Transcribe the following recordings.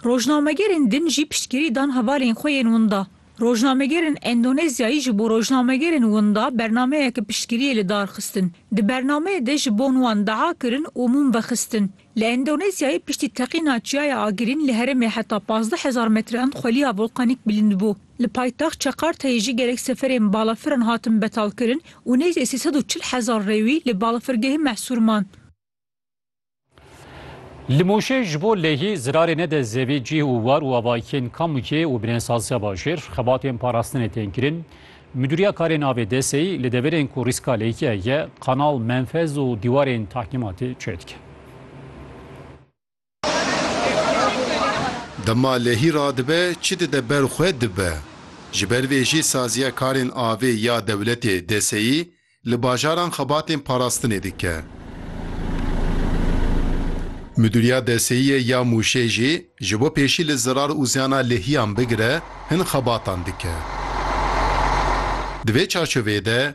Rojnamegerên din jî piştgirî dan hevalên xwe yên winda. Rojnamegerên Endonezyayî ji bo rojnamegerên winda bernameyeke piştgiriyê li dar xistin. Di bernameyê de ji bon wan dua kirin û mûm vexistin. Li Endonezyayê piştî teqîna çiyaya Agirîn li herêmê heta pazdeh hezar metrean xweliya volkanîk bilind bû. Li paytext Çekarteyê jî gelek seferên balafiran hatin betalkirin û nêzî sê sed û çil hezar rêwî li balafirgehê mehsûr man. Li Mûşê ji bo lehî zirarê nede zevê cih û war û avayikên Kamûkê û Binêsaziya Bajêr xebatên parastinê tên kirin. Midûriya Karên Avê DSEyî li deverên ku rîska lehî heye, kanal, menfez û dîwarên tahkîmatê çêdike. Dema lehî radibe çi dide ber xwe dibe. Ji ber vê jî saziya karên avê ya dewletê, DSEyî, li bajaran xebatên parastinê dike. Midûriya DSEyî ya Mûşê jî ji bo pêşî li zirar û ziyana lehîyan bigire hin xebatan dike. Di vê çarçoveyê de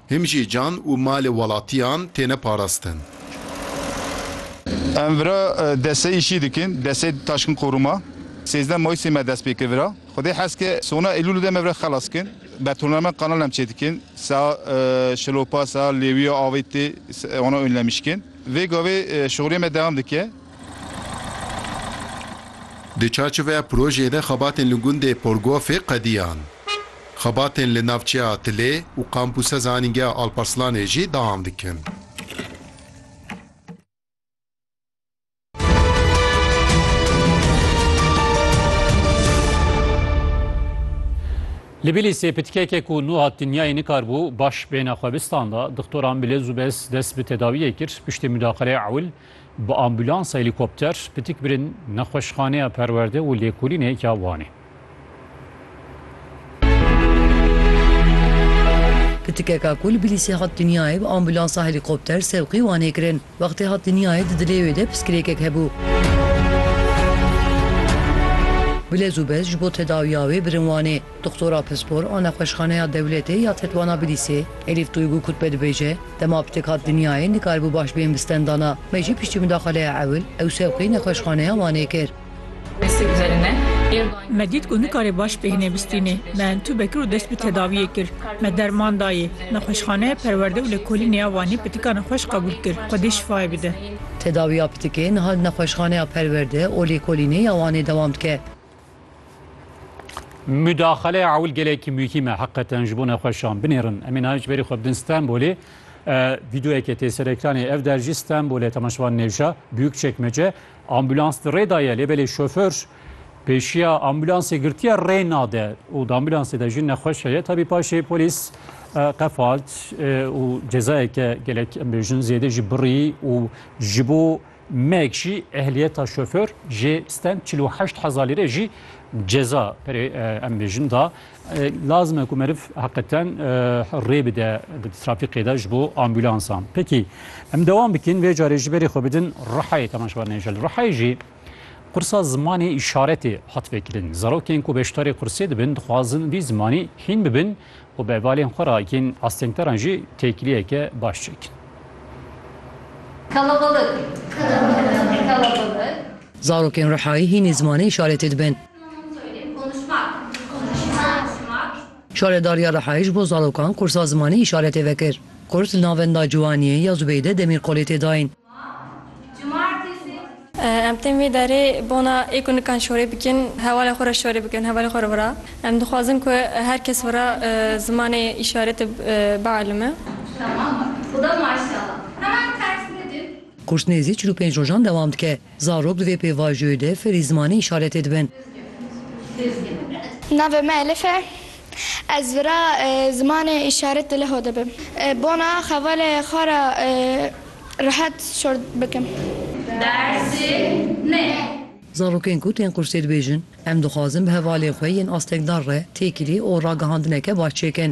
Him jî can û malê welatiyan têne parastin. Em vira destê îşî dikin, destê Taşkîn Qoruma. Sêzdeh Mayîsê me dest pê kir vira. Xwedê hez ke sona Eylûlê de me vira xelas dikin. Betonarme kanal em çêdikin, saha şilopa, saha lêwiya avê tê, wana ûnlemişkin. Vê gavê şixuliyê me dewam dike. Di çarçoveya projeyê de xebatên li gundê Porgofê qediyan. Xebatên li navçeya Tilê û kampûsa zanîngeha Alparslanê jî dewam dikin. Li Bîlîsê pitkekê ku nuhat dinyayê nikaribû baş bêhna xwebistan da, dixtoran bi lez û bez dest bi tedawiyê kir, piştî mudaqilê ewil, Bi ambulans helîkopter pitik birin Nexweşxaneya Perwerde û Lêkolînê ya Wanê. Pitikeka ku li Bilîsê hat dinyayê bi ambulansa helîkopter sewqî Wanê kirin. Wextê hat dinyayê di dilê wê de piskirêkek hebû. Bi lez û bez ji bo tedawiya wê birin Wanê. Doxtora pispor a Nexweşxaneya Dewletê ya Tetwana Bilîsê Elîf Duygu Kutbe dibêje, Dema pitek hat dinyayê nikaribû baş bên bi stendana me jî piştî mudaxaleya ewil ew sewqê Nexweşxaneya Wanê kir. Me dît ku nikare baş bêhne bistînê, me entûbe kir û dest bi tedawiyê kir. Me derman dayê. Nexweşxaneya Perwerde û Lêkolînê ya Wanê pitika ne xweş qebûl kir. Xwedê şifayê bide. Tedawiya pitikê niha li Nexweşxaneya Perwerde û Lêkolînê ya Wanê dewam dike. Mudaxale ewil gelekî muhîm e heqeten ji bo nexweşan binêrin. Emê nayê ji berî xwe bidin Stenbolê. Vîdeoyekê tê ser ekranê ev der jî Stenbolê temaşevan nêvja Büyük Çekmece. Ambulans di rê da ye lê belê şoför pêşiya ambulansê girtiye rê nade û di ambulansê de jî nexweş heye. Tabî paşê polîs qefalt û cezayeke gelek em bêjin zêde jî birî û ji bo Meg jî ehliyeta şoför jê stand çil û heşt hezar lîre jî ceza perê em bêjin da. Lazim e ku meriv heqeten rê bide di trafîkê de ji bo ambûlansan. Pekî em dewam bikin vê carê ji berê xwe bidin Rihayê temaşevan hêja li Rihayê jî qursa zimanê îşaretê hat vêkirin. Zarokên ku beşdarê qursê dibin dixwazin vî zimanî hîn bibin û bi hevalên xwe re yên astengdaran jî têkiliyeke baş çêkin. Kalabalık Kalabalık. Zarokên Rihayî hînî zimanê îşaretê dibin. Şaredariya Rihayê ji bo zarokan kursa zimanê îşaretê vekir. Kurs li navenda Ciwaniyê ya Zubeyde Demîrkolê tê dayîn. Em tên vê derê bona ê ku nikan şorê bikin hevalên xwe re şorê bikin hevalên xwe re wira. Em dixwazin ku her kes wira zimanê îşaretê bielime. Kurs nêzî çil û pênc rojan dewam dike. Zarok di vê pêvajoyê de fêrî zimanê îşaretê dibin. Navê me Elif e. Ez vira zimanê îşaret di leho de bim. Bona xevalê xwe re rehet şor bikim. Dersê me. Zarokên ku tên qursê dibêjin, Em dixwazin bi hevalên xwe yên astekdar re têkilî û ragihandineke baş çêkin.